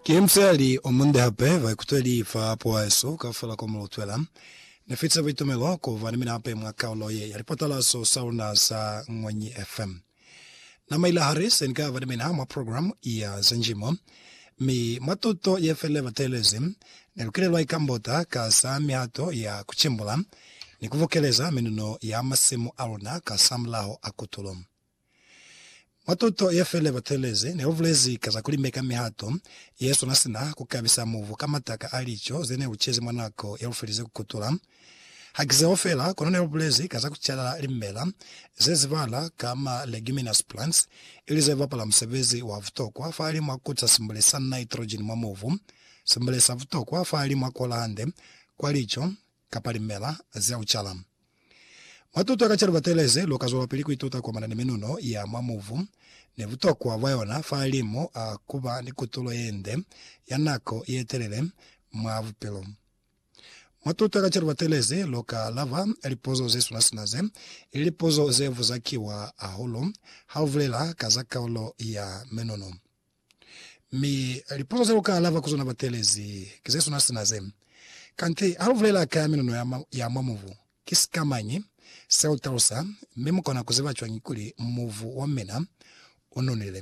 Ki musali omunde hape baikutweli fa poahesu kaufela ko mulutwela. Nifitise buitumelo kuba ni mina hape mwa kaulo ye ya lipatalaso saluna sa Ñwanyi FM. Na maila hali, Se ni ka ba ni mina mwa program ya za njimo, mi mwa tuto ye feli ba teelezi, ne lukile lwa ikambota ka za mihato ya ku cimbula ni ku bukeleza minuno ya masimu a luna ka za mulaho a kutulo. Mwa tuto ye feli ba teelezi, ne lu bulezi ka za ku limeka mihato ye swana sina ku kabisa mubu ka mataka a lico ze ne lu cezi mwa nako ye lu felize ku kutula. Ha ki zeo fela, kono ne lu bulezi ka za ku cala limela ze zibala ka ma leguminous plants, ili ze bapala musebezi wa butokwa fahali mwa ku ca simbule sa nitrogen mwa mubu, simbule sa butokwa fahali mwa ku ola hande kwa lico kapa limela za ku cala. Mwa tuto ka ca libatereze, lu ka zwelapili ku ituta ku amana ni minuno ya mwa mubu ni butokwa bwa yona fahalimu a ku ba ni kutulo ye nde ya nako ye telele mwa bupilo. Matuta ka calo batelezi lu ka alaba lipuzo ze suna sina ze, ili lipuzo ze vuzakiwa hahulu ha u bulela ka za kaulo ya menono. Mi lipuzo ze lu ka alaba ku zona batelezi ki ze suna sina ze, Kanti ha lu bulela ka ya menono ya mwa mubu, ki sikamañi se u talusa, mi mu kona ku ziba cwañi kuli mubu wa mina u nonile?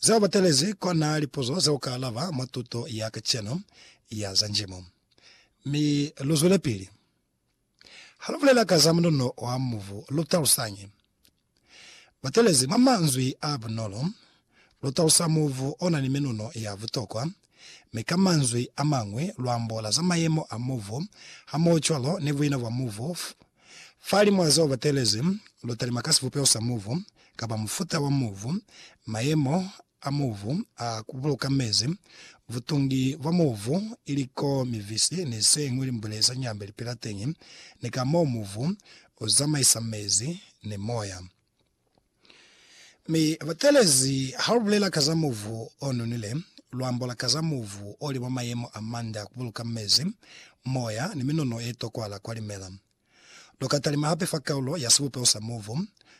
Zeo batelezi kona lipuzo ze uka alaba mwa tuto ya kacenu ya za Njimu. Mi luzwelepili. Ha lubulela ka za munono wa mubu, lutalusañi? Batelezi mwa manzwi a bunolo, lutalusa mubu ona ni minono ya butokwa Mi ka manzwi a mañwi, luambola za mayemo a movo, hamohocwalo ni buina bwa movo, fa limwa zeo batelezi, lu talima ka sibupeo sa movo, kapa mufuta wa movo, mayemo a movo a ku buluka mezi, butungi bwa movo, ili ko mivisi ni señwi limbwile za nyambe lipila teñi, ni ka moo movo u zamaisa mezi ni moya. Mi batelezi ha lu bulela ka za mubu o nonile, lu ambola ka za mubu o li mwa mayemo a mande a ku buluka mezi, moya, ni minono ye tokwala kwa limela. Lu ka talima hape fa kaulo ya sibupeho sa mubu,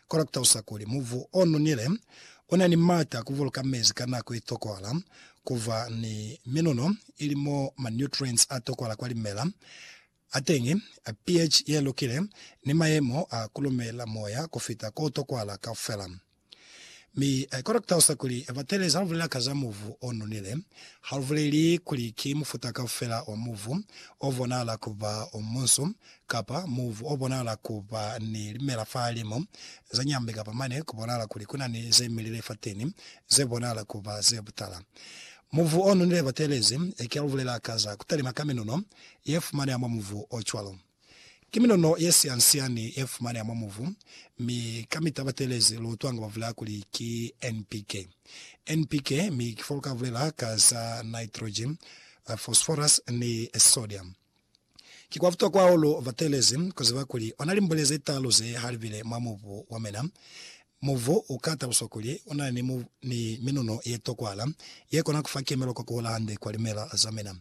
kono ku talusa kuli mubu o nonile u na ni m'ata a ku buluka mezi ka nako ye tokwala, ku ba ni minono, ili mo ma-nutrients a tokwala kwa limela, A teñi, a pH ye lukile, ni mayemo a kulumela moya ku fita ko tokwahala kaufela. Mi I kona ku talusa kuli batelezi ha lu bulela ka za muvu o nonile, ha lu buleli kuli ki mufuta kaufela wa muvu o bonahala ku ba o munsu, kapa muvu o bonahala ku ba ni limela fahalim'o za nyambe kapa mane ku bonahala kuli ku na ni ze milile fateni ze bonahala ku ba ze butala. Muvu o nonile batelezi, ki ha lu bulela ka za ku talima ka minuno ye fumaneha mwa muvu o cwalo. Ki minono ye sian-siani ye fumaneha mwa muvu, mi ka mi tabatelezi lu utwanga ba bulela kuli ki NPK. NPK, mi ki fo lu ka bulela ka za nitrogen, phosphorus ni sodium. Ki kwa butokwa hahulu batelezi ku ziba kuli ona limbwele ze talu ze ha li bile mwa mubu wa mina, Mubu u ka taluswa kuli u na ni minuno ye tokwala ye kona ku fa kemelo kwa ku hola hande kwa limela za mina.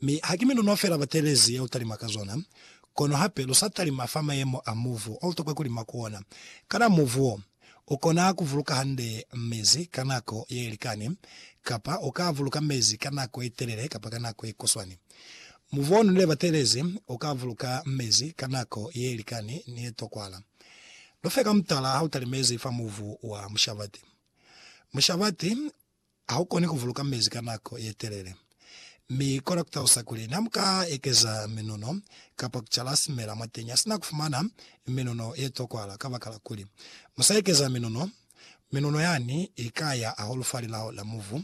Mi haki minuno fela batelezi ye u talima ka zona, kono hape lu sa talima fa mayemo a mubu o tokwa ku lima ku ona. Kana mubu wo u kona ku buluka hande mezi ka nako ye likani, kapa u ka buluka mezi ka nako ye telele kapa ka nako ye kuswani? Mubonu ne batelezi u ka vuluka mezi ka nako ye likani ni ye tokwala. Lufe ka mutala ha u talimezi fa muvu wa mushabati. Mushabati ha u koni ku vuluka mezi ka nako ye telele, mi kona ku talusa kuli ne mu ka ekeza minuno kapa ku cala simela mwateñi sina ku fumana minuno ye tokwala. Kabakala kuli mu sa ekeza minuno, minuno yani i ka ya hahulu fa lilao la muvu.